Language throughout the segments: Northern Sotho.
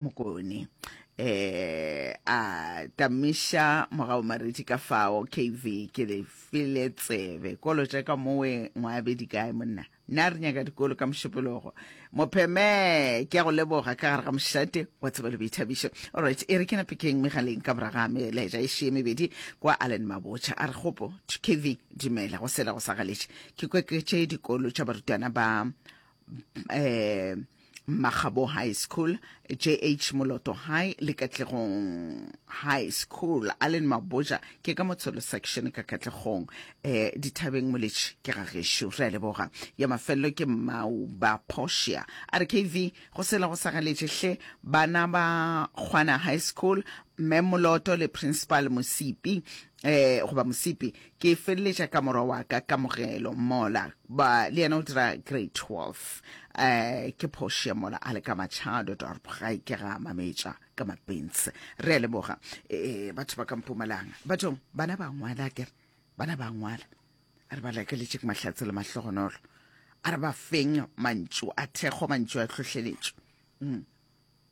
mokone eh a tamiša morago maredi ka fao kv ke le file tsebe kolo tša ka mowe ngwabe di kae monna nna re nyaka dikolo ka mošupologo mopheme ke ya go leboga ka gare ga mošate wa tseba le boithabišo allright e re ke napekeng megaleng ka moraga meleja e šie mebedi kwa allen mabotšha a re kgopo kv dumela go sela go sa galetše ke kweketše dikolo tša barutwana ba eh Magabo High School, JH Moloto High le Katlegong High School. Allen Maboja ke ka motsholo section ka Katlegong. Eh dithabeng moletši ke ga gesho re a leboga. Ya mafello ke Mauba Portia. RKV go sela go sa galetše hle bana ba Kgwana High School Mme Moloto le Principal Mosipi eh, goba mosipi ke feleletša ka morwa wa ka kamogelo mola ba le yena o dira grade 12 eh ke phoše mola a le ka machado dorp ga e ke ga mametša ka mapentse re a leboga eh batho ba ka mpumalanga bathong bana ba ngwala ke re bana ba ngwala a re ba lakeletše ke mahlatse le mahlogonolo a re ba feng mantšu a thekgo mantšu a tlhohleletšo mm.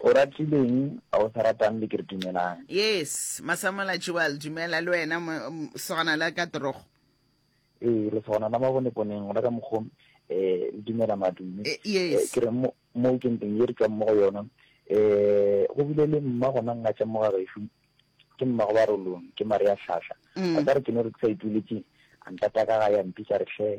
O ratileng ga o sa ratang le kere dumelang. Yes Masamola Jewel dumela le wena sogana la ka torogo. Ee lesogana la maboneponeng gona ka mokgo um le dumela madume eh, yes. Eh, ke re mo mo ke nteng ye re tswang mo go yona um go bile le mma gona nna tša moga gešo ke mma go ba rolong ke mare ya hlahla mm. a ka re ke no re ke sa ituletse a ntata ka ga ya mpitsa re hle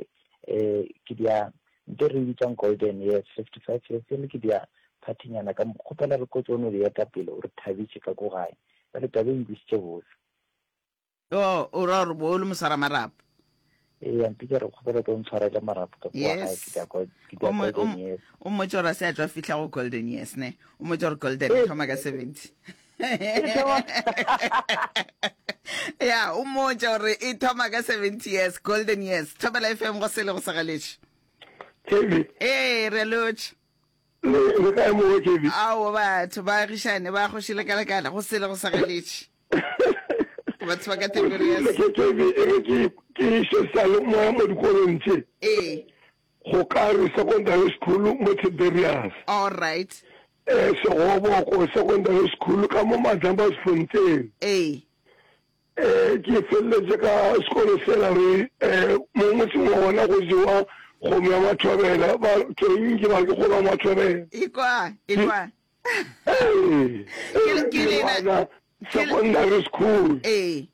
um ke dia Nke re e bitsang Golden Years, fifty-five years, e le ke dia phathinyana ka mo. Kgopela re kotse o no di eta pele, o re thabitše ka ko gae. Bjale taba e nkwisitše bose. Yoo, o ra gore bo o le moswara marapo? Eya, mpitša re kgopela o tlo ntshwarele marapo ka kua gae, ke dia, ke dia Golden Years. O mmotša gore a se a tšwa fihla go Golden Years, ne? O mmotša gore Golden e thoma ka seventy. ya o mmotša gore e thoma ka seventy years golden years thobela fm go sele go segaletše kevin ee re lotšhe le kae mowe kevin ao batho ba agišane ba kgoši lekalekala go sele go segaletše ke batho ba ka tebelo ya kevin e re ke ke šesa le moya mo dikolong tše ee Go ka re Secondary School mo Tiberias. All right. Ee, Segoboko Secondary School ka mo Madlambazifonteng. Ee. Ee, ke feleletše ka sekolo sela re ee, mo motseng wa gona go jewa kgomo ya mathobela, ba tsweng ke ba ke kgolo ya mathobela. Ekwa, ekwa. Ee, ee, ke lena Secondary School. Ee.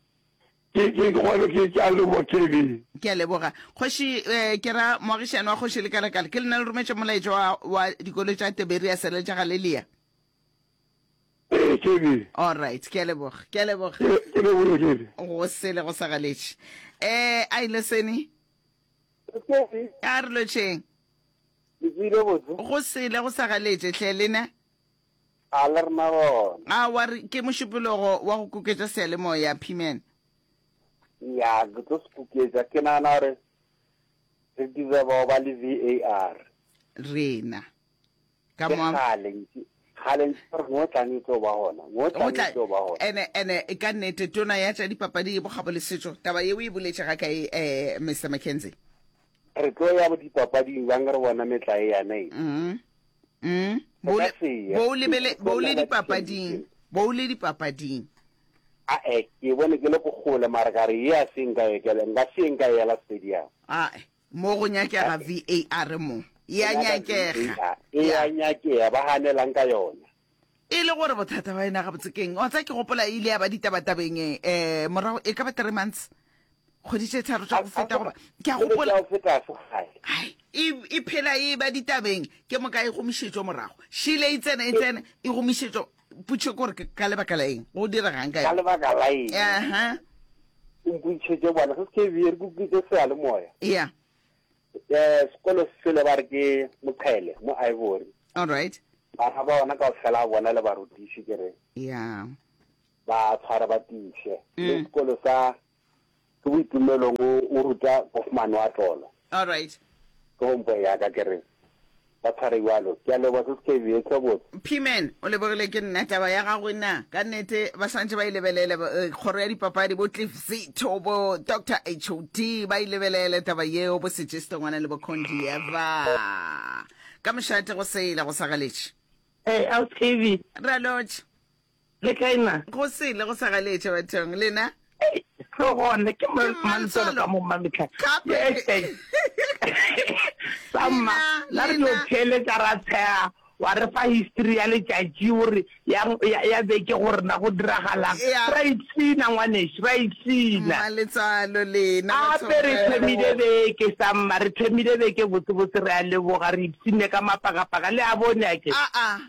Ke, ke, ke gona ke, ke a leboga KB. Ke a leboga kgoši, eh, ke ra moagišani wa kgoši le kalakala, ke lena le rometše molaetša wa, wa dikolo tša Tiberiase le tša Galilea. Ee, KB. Alright, ke a leboga, ke a leboga. Ke, ke leboge KB. Go sele go sa galetše. Eh, a ile seni? KB. A re lotšheng. Ke tsile botse. Go sele go sa galetše, hle lena? A le re na gona? A wa re ke mošupulogo wa go kuketša seyalemoya, P-man? Ya, ke tlo se kuketša. Ke nagana gore re deserva go ba le VAR. Rena. Ka Ke moa. kgale ntse kgale ntse gore mo tlang e tlo ba gona. Mo Mo tlang tla- e tlo ba gona. ene ene e ka nnete tona ya tša dipapadi bokgabo le setšo taba yeo e boletše ga kae um mr mckenzie Re tlo ya go dipapading bjang re bona metla e yana e. mm Mm, bo le bo o lebele bo o le dipapading, bo o le dipapading. a e ke bone ke le go gole mara ka re ye a se nka ye kele nka se nka yela stadium A e, mo go nyakega VAR mo. E a nyakega. e ya Ya. nyakea ba ganelang ka yona e le gore bothata ba ena gabotse keng wa tsa ke gopola e ile ya ba ditabatabeng um morago e ka ba three months kgwedi tše tharo tša go feta goba ke a gopola e, e phela e ba ditabeng ke moka e gomišetšo morago šile e tsena e tsena e gomišetšo putšhe kore ka lebaka la eng go diregang ka lebaka la eng aha o mputšhetše bone se se ke bjere ke utlwitse seyalemoya ya Eh, sekolo selo ba re ke Moqhele mo Ivory. All right. Bana ba ona kaofela bona le barutiši ke re. Yeah. Ba tshwara ba tiše. Mm. Le sekolo sa ke boitumelong o ruta Bofman wa tlolo. All right. Ke hompo ya ka ke re. Ba tshware bjalo. Ke a leboga, se se ka ebiyo. Eupša botse. P-man, o lebogile ke nna taba ya gago e na? Ka nnete, ba swantše ba e lebelele, ba, eh, kgoro ya dipapadi, bo Cliff Zito, bo Doctor HOD, ba e lebelele taba yeo, bo Sejesto Ngwana le bo Condi Eva. Ka mošate go sele, go sa galetše. Ee, Ausi Kevin. Ralotše. Le kae na? Go sele go sa galetša bathong. Lena? Ei, tlo gona. Ke Ke Mmansolo ka mo Mmametla. Gape. Yes, thanks. Sa mma, Lena, na re tlo lena. theeletša ra tshega wa re fa history ya letšatši gore ya, ya, ya beke gore na go diragalang. Ya. Ra ipshina ngwanešu, ra ipshina. Mmaletsalo lena ba Gape re thomile thomile beke sa mma, re thomile beke botsebotse re a leboga, re ipshinne ka mapagapaka le a bone a ke. A a.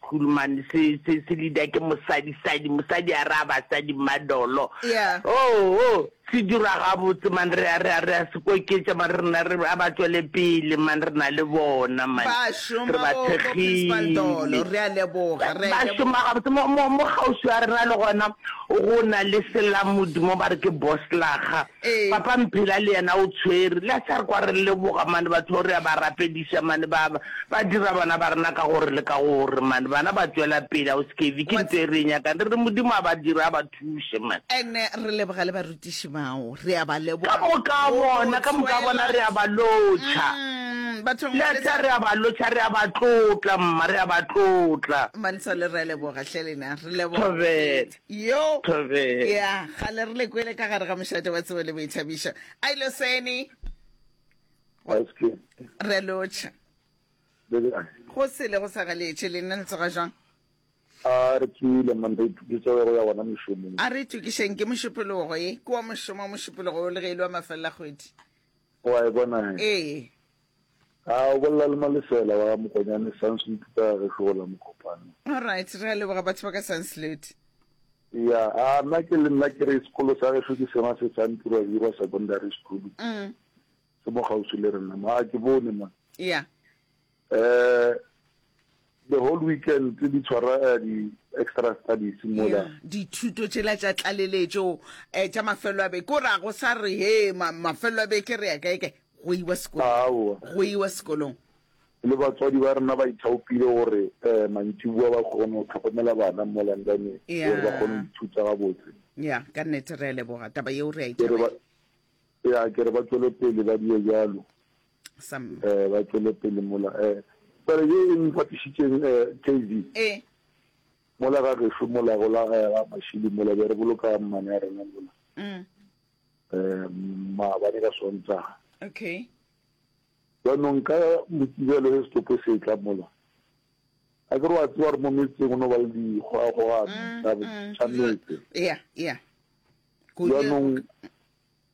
Kuruman se se se leader ke mosadi sadi mosadi a re a basadi mmadolo Yeah. oh oh se dira gabotse man re a re a re a se koketša man re na re a ba tšwele pele man re na le bona man Ba re šoma ba bo- bo Principal Dolo, thekgile re a leboga, re a ba leboga. šoma gabotse mo mo mo kgauswi a rena le gona go na le selamodi mo ba re ke boslaga Ee. Papa Mphela le yena o tshwere. Le a sa re kwa re leboga mane batho bao re a ba rapediša mane ba ba dira bana ba rena ka gore le ka gore mane bana ba tšwela pele Hauskevy ke ntho e re e nyakang re re Modimo a ba dire a ba thuše mane. And re leboga le barutiši bao re a ba leboga ka moka go no bona ka moka bona tšwela re a ba lotšha Umm batho le ngwe a le tla re a ba lotšha re a ba tlotla mma re a ba tlotla. Mantshole re a leboga hle lena re leboga Thobela. yo ya gale re lekwele ka gare ga mošate wa tsebo le boithabišo a ilo sene re lotšha go sele go sa galetše le nna le tsoga jang a re tsile man re ituketsa go ya gona mošomong a re itukešeng ke mošupologo e ke wa mošomo wa mošupologo o le ge e le wa mafelela kgwedi wa e bona ee A o bolela le Malesela wa ga Mokonyane, Sanslute ka gešo go la Mokopane. All right, re a leboga batho ba ka Sanslute. Ya, a nna ke le nna ke re sekolo sa gešo ke sona se sa Ntirwa Hirwa Secondary School. Mm. Se mo gausi le rena, ma ke bone ma. Ya. Eh, The whole weekend tse di tshwara uh, di extra studies mola yeah, dithuto tšela tša tlaleletšo um eh, tša mafelo a beke ko ra go sa re he ma, mafelo a beke re ya kaekae go iwa sekolong go iwa sekolong le batswadi ba rena ba ithaopile gore um mantšiboa ba kgone go tlhokomela bana mo londone gore ba kgone go ithuta gabotse ya ka nnete re a leboga taba yeo re a ithabela ya ke re ba tswele pele ba die jalo Some. Eh, ba tšwele pele mola. Eh, pele ye e mpatišitšeng eh, KV. Eh. Mola ga gešo mola go la eh, ga mašili mola be re boloka mmane ya rena mola. Mm. Eh, maabane ka Sontaga. Okay. jaanong ka mokibelo se setopo se tla mola a ke re wa tsewa re mo metseng o no ba le dikgwagogano tsa mm, mm, metse jaanong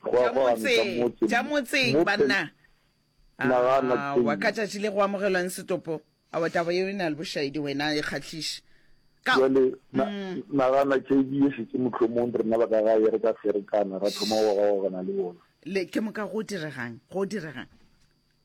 Tša motseng, tša motseng banna. Aowa, ka tšatši le go amogelwang setopo, aowa, taba yeo e na le bošaedi, wena e kgahliše. Bjale, nagana, JB e šetše mohlomong rena ba ka gae re ka ferekana, ra thoma go gogagana le bona. Le, ke moka go diregang, go diregang.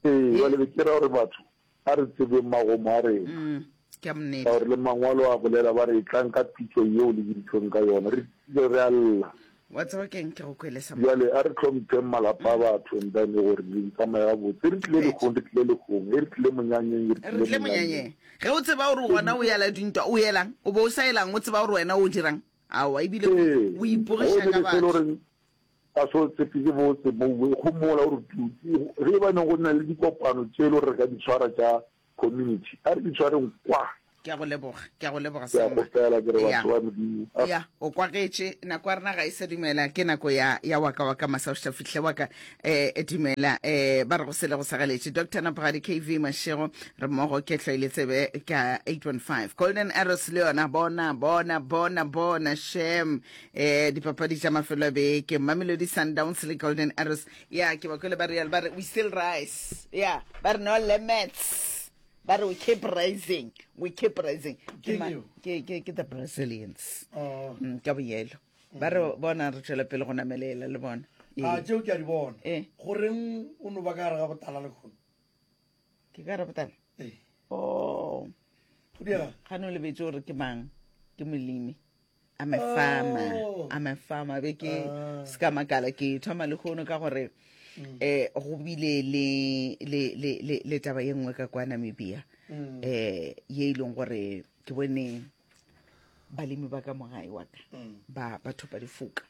Ee, bjale be ke ra gore batho, Ga re tsebeng magomo a rena. Ke a monnete. Ka gore le mangwalo a bolela ba re tlang ka pitšo yeo le biditšweng ka yona. Re tsile re a lla. Wa tseba ke eng ke go kwele sa. Bjale a re tlhompheng malapa a batho and then gore re tsamaye gabotse. E re tlile legong re tlile legong. E re tlile monyanyeng e re tlile monyanyeng. Re tlile monyanyeng. Ge o tseba gore gona o yala dintwa o yelang o be o sa yelang o tseba gore wena o dirang. Aowa ebile o ipogiša ka batho. Ka seo tse pedi bo tse bouwe go mola gore tutsi ge e ba ne go na le dikopano tše lo re ka di tshwara tša community a re di tshwareng kwa. Ke a go leboga, ke a go leboga Selma. Ke a kgopela ke re batho ba Modimo. Eya, o kwagetše. Nako ya rena ga e sa dumela. Ke nako ya, ya waka waka masaošta fihle waka. Eh, dumela. Eh, ba re go sele go sa galetše. Doctor Napogadi KV Mashego re mmogo ke hloile tsebe ka 815. Golden Arrows le yona bona, bona, bona, bona, shem. eh dipapadi tša mafelo a beke mamelodi sundowns le golden arrows ya ke ba kwele ba real ba re we still rise ya ba re no limits ba re we keep rising we keep rising ke Ke ma- eo. ke- ke ke the brazilians Oh. Mm, ka boyelo ba re bona re tšwela pele go namelela le bona a Ee. tšeo ke a di bona Eh. goreng o no ba ka gare ga botala le kgono ke ka rabotana eh. o oh. ga ne o lebetse gore ke mang ke molemi a mefama oh. a mefama be ke ah. se ka makala ke thoma le kgono ka gore um go bile le taba ye nngwe ka kwa namibia um ye e leng gore ke bone balemi ba ka mogae wa ka mm. ba ba thopa difoka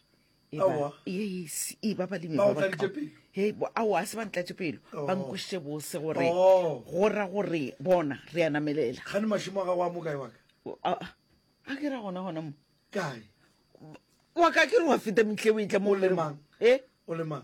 Aowa. yes e ba balemi Ba ba o ba tladitše pelo? Hei, bo- aowa a se ba ntlatše pelo ba Oh. nkwešiše bose gore Oh. go ra gore bona re a namelela gane mašimo a gago a mokae waka a a ke ra gona gona mo kae wa ka ke re wa feta metleo e tla mo O lemang? e o le mang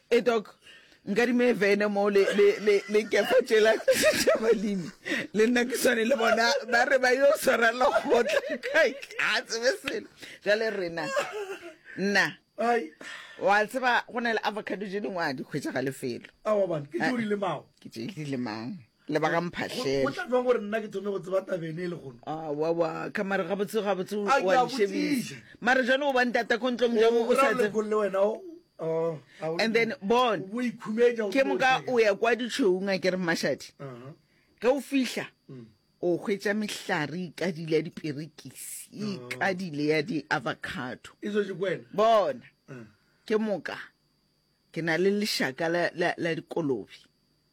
Ee Doc, nkadime vene mo le, le, le, le kefa tšela tša balemi. Le nna ke swane le bona, ba re ba yo swara lekgotla kae, a tsebe selo. Jale rena, nna, wa tseba go na le avocado tše dingwe a di hwetša ga lefelo. Awa bana, ke tše o di lemago. Ke tše ke di lemago. le ba ga mphahlele tla jwang gore nna ke thome go tseba tabene e le gono awawa ka mare gabotse gabotse wa shebisa mare jane o bang tata ko ntlong jang o sa le wena oh, and then bon ke moka o ya kwa ditšhoung a ke re mashadi uh-huh. ge o fihla mm. o hwetša mehlare ikadile ya diperekisi uh-huh. ikadile ya di-avocado e bona uh. ke moka ke na le lešaka la dikolobe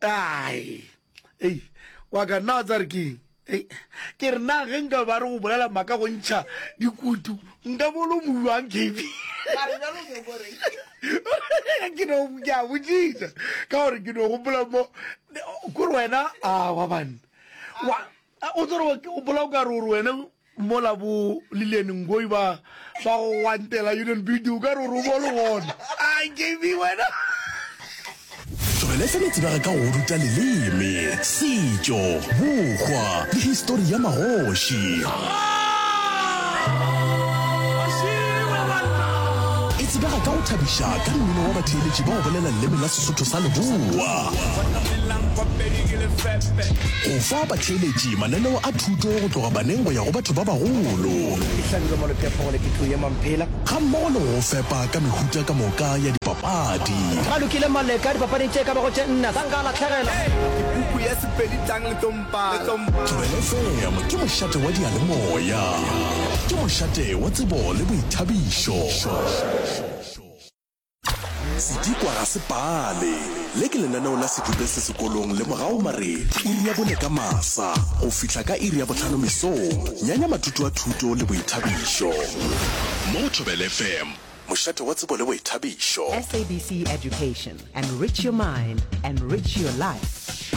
Ai, ei, wa ka nna wa tsa re keng? Ei, ke re na ge nka ba re go bolela maka go ntšha dikutu nka bolo mojuang kb ke no ke a botsisa ka gore ke no gopola mo kore wena a wa banna o tsere o bola o ka re gore wena Mola bo Lillian Ngoyi ba ba go gwantela Union Building, o ka re o re o bo le gona. A JB wena. Tlogele fela o tsebega ka go ruta leleme, setšo, bokgwa le histori ya magoši. E tsebega ka go thabiša ka mmino wa batheeletši ba go bolela leleme la Sesotho sa Leboa, go fa Theeletše, Mananeo a thuto go tloga baneng go ya go batho ba bagolo. Ke hlabilwe mo lephephong le ke tlo yema mphela. Gammogo le go go fepa ka mehuta ka moka ya dipapadi. Ba lokile Maleka dipapading tše e ka bago tše nna. Sa nka a lahlegela. Ke puku ya Sepedi tlang le tlo mpala. Thobela FM ke mošate wa diyalemoya. Ke mošate wa tsebo le boithabišo. Sedikwa ga se pale. Le ke lenaneo la Sedupe se sekolong le morago mare iri ya bone ka masa go fihla ka iri ya bohlano mesong. Nyanya mathuto a thuto le boithabišo mo go Thobela FM, mošate wa tsebo le boithabišo. SABC Education, enrich your mind, enrich your life.